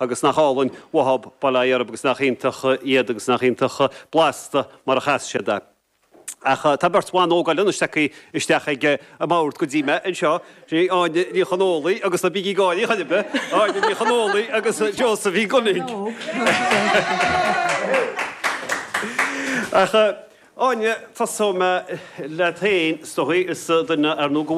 Agus nach álainn uathab bail ó Dhia orthab agus nach iontach iad agus nach iontach blasta mar a chas siad é. Ach tá beirt bhan óga eile anois tagtha isteach ag an mbord go dtí mé anseo, sin í Áine Ní Chonólaigh agus, ná bígí ag gáirí chor ar bith! Áine Ní Chonólaigh agus Josephine Gunning. Ach. Áine, Tosóidh mé leat féin, is dóigh, is duine ar ndóigh de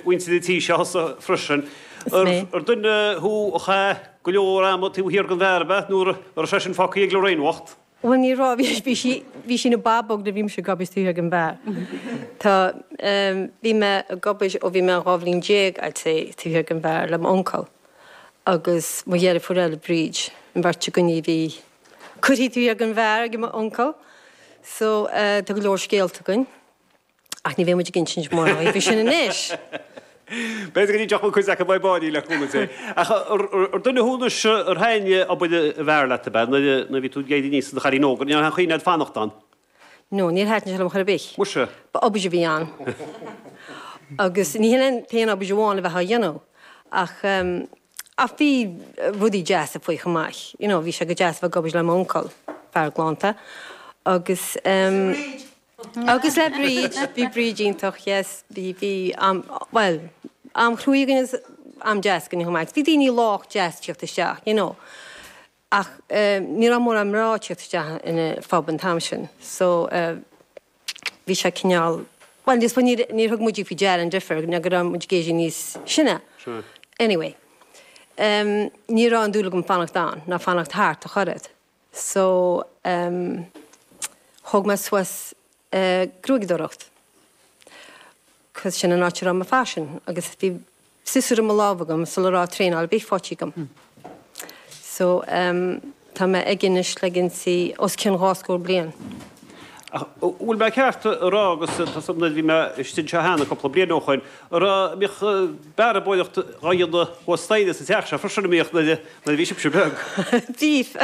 mhuintir an tí seo thusa freisin. Is mé. Ar duine thú a chaith go leor ama taobh thiar den bheár, ab ea, nó an raibh sé sin fágtha ag Lorraine bhocht? Bhuel, ní raibh, bhí sí, bhí sí ina bábóg nuair a bhí mise ag obair taobh thiar den bheár. Tá, bhí mé ag obair ó bhí mé dhá bhliain déag, I'd say, taobh thiar den bheár le m'uncail agus mo dheirfiúr eile, Bríd, an bheirt againne a bhí curtha taobh thiar den bheár ag mo uncail so tá go leor scéalta againn ach ní bheidh muid ag insint mórán faoi sin anois. B'fhéidir go dtiocfadh cuid acu faoi báiní le cúnamh Dé. Ach ar dhuine thú nó ar thaitin obair an bheáir leat ab ea nuair a bhí tú ag éirí aníos i do chailín óg? Ar thaitin leat fanacht ann? No, níor thaitin sé liom chor ar bith. Muise. Ba obair a bhí ann. Agus ní hin an t-aon obair amháin a bheadh á dhéanamh. Ach, em, ach bhí rudaí deasa faoi chomh maith. You know, bhí sé go deas a bheith ag obair le m'uncail, fear galánta. Agus, em, agus le Bríd, bhí Bríd iontach, yes, bhí, bhí am, bhuel, am chruaidh againn agus am deas againn chomh maith. Bhí daoine lách deas tíocht isteach, you know. Ach ní raibh mórán mná ag tíocht isteach chun an phub an t-am sin so bhí sé cineál, bhuel I suppose, níor thug muide faoi deara an difear nó go raibh muid ag éirí níos sine. Anyway, ní raibh aon dúil agam fanacht ann ná fanacht thart ach oiread so thóg mé suas gruaigeadóireacht. cos sin an áit a raibh mo phaisean agus bhí siosúr i mo lámh agam sula raibh traenáil ar bith faighte agam. So, em, tá mé aige anois le os cionn dhá scór bliain. Ach, bhfuil mé ceart a rá agus tá a fhios agam bhí mé istigh anseo cheana cúpla bliain ó shoin, an raibh, an mbíodh bearbóireacht á dhéanamh thuas staighre sa teach seo freisin, an mbíodh, nuair a, nuair a bhí sibhse beag? Bhíodh,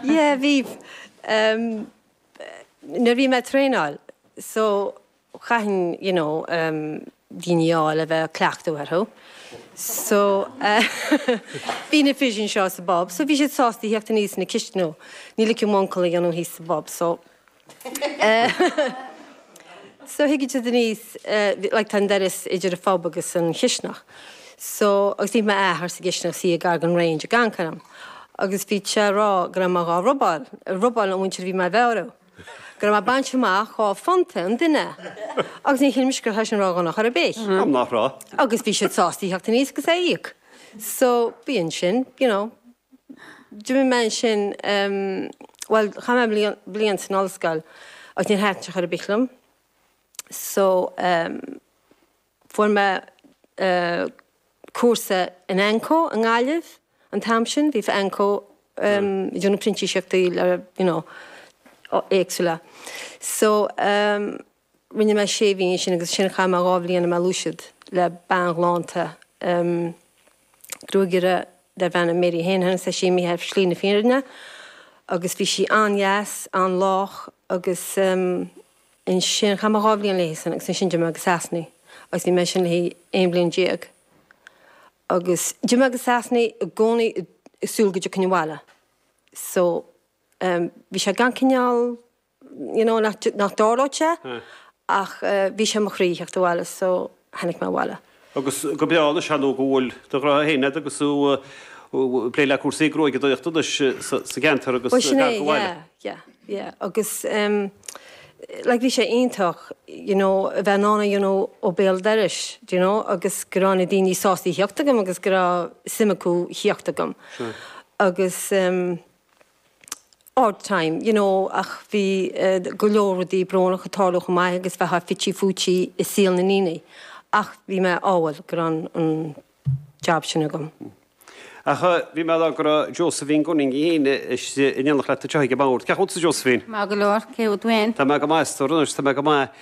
yeah, bhíodh. Em, nuair a bhí mé ag traenáil, so, chaithfinn you know daoine a fháil a bheith cleachtadh orthu so bhí na fir anseo sa bpub so bhí siad sásta theacht aníos chun na cisteanaí ní ligfeadh m'uncail a dhéanamh thíos sa bpub so so thigeadh siad aníos like tá an doras idir an phub agus an chisteanach so agus bhí m'athair sa gcisteanach ina shuí gar don range ag cancrán agus bhí sé a rá go raibh mé dhá robáil, robáil an mhuintir a bhí mé a bhearradh. Go raibh mé ag baint amach dhá phunta an duine, agus ní shílimse go raibh sin ródhona chor ar bith. M'anam nach raibh. Agus bhí siad sásta a theacht aníos agus é a íoc. So, bhí ansin, you know, d'imigh mé ansin, bhuel, chaith mé bliain, bliain san ollscoil agus níor thaitin sé chor ar bith liom. So. Fuair mé cúrsa in AnCO i nGaillimh an t-am sin, bhí AnCO ag déanamh printíseachtaí you know éagsúla. So rinne mé sé mhí ansin agus ansin chaith mé dhá bhliain i mBéal an Mhuirthead le bean ghalánta gruagaire darbh ainm Mary Heneghan, tá sí sin imithe ar shlí na fírinne agus bhí sí an-deas, an-lách agus. Ansin chaith mé dhá bhliain léi san agus ansin d'imigh mé go Sasana agus bhí mé ansin le haon bhliain déag agus d'imigh mé go Sasana i gcónaí ag súil go dtiocfainn abhaile. So, em, bhí sé gan cineál, you know, nach, nach dtarlódh sé ach bhí sé i mo chroí theacht abhaile, so. tháinig mé abhaile. Agus go breá, anois ar ndóigh go bhfuil do ghnó féin agat agus tú ag plé le cúrsaí gruaigeadóireachta anois sa gceantar agus Bhuel, sin é, gar go bhaile. yeah, yeah, yeah. Agus em like bhí sé iontach you know a bheith in ann a dhéanamh ó bhéal dorais do you know agus go raibh na daoine sásta a theacht agam agus go raibh suim acu theacht agam. Sure. Agus em. ard-time, you know ach bhí go leor rudaí brónacha ag tarlú chomh maith agus bheifeá fite fuaite i saol na ndaoine ach bhí mé ádhúil go raibh an jab sin agam. Ach bhí mé ag rá go raibh Josephine Gunning í féin in éineacht leat anseo ag an mbord. Cén chaoi a bhfuil tú Josephine? Maith go leor, cé thú féin? Tá mé go maith is tú anois? Tá mé go maith.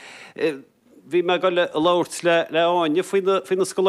Bhí mé ag dul a labhairt le Áine faoi na scoláirí.